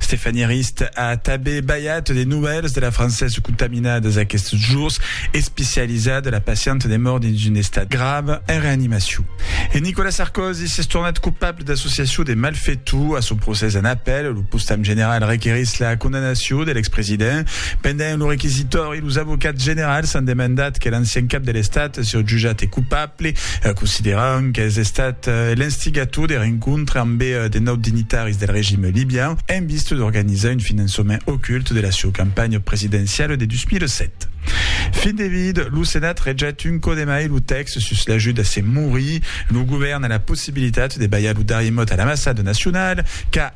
Stéphanie Arist a tanben balhat de novèls de la Française contaminadas aquests jours, especializada la pacienta de mòrt dins un estat grave en reanimacion. E Nicolas Sarkozy s'es tornat copable d'associacion de malfetor. A son procès en apèl, lo postam general requerís la condamnacion de l'expresident. Pendent lo requisitori, Los avocats generals an demandat que l'ancian cap de l'Estat siá jutjat cupable, consideran qu'es estat l'instigator de rencontre amb de naut dignitaris del regim libian en vista d'organizar un finançament ocult de la sieu campanha presidenciala de 2007. Fin de vid, lo Senat rejet un còp de mai lo tèxt sus l'ajut a se morir. Lo govèrn a la possibilitat de balhar lo darrier mot a l'ambassada nacionala, qu'a.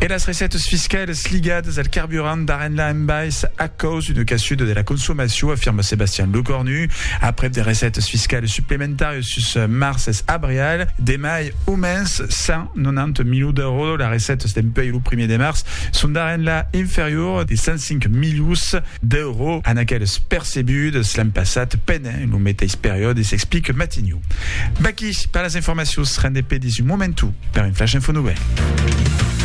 E las recètas fiscalas ligadas al carburant d'Arenla en bais a caus d'una caçuda de la consomacion, afirma Sebastian Lecornu. Aprèp de recètas fiscalas suplementàrias sus març es abrial, demai au mens 190 milions d'èuros, las recètas dempuèi lo primièr de març son d'Arenla inferior de 105 milions d'èuros a n'aquelas percebudas l'an passat pendent lo meteis periòde, s'explica Matignon. Merci per las informacions, rendez-pe dins un momentu per un Flash Info Nouvelle.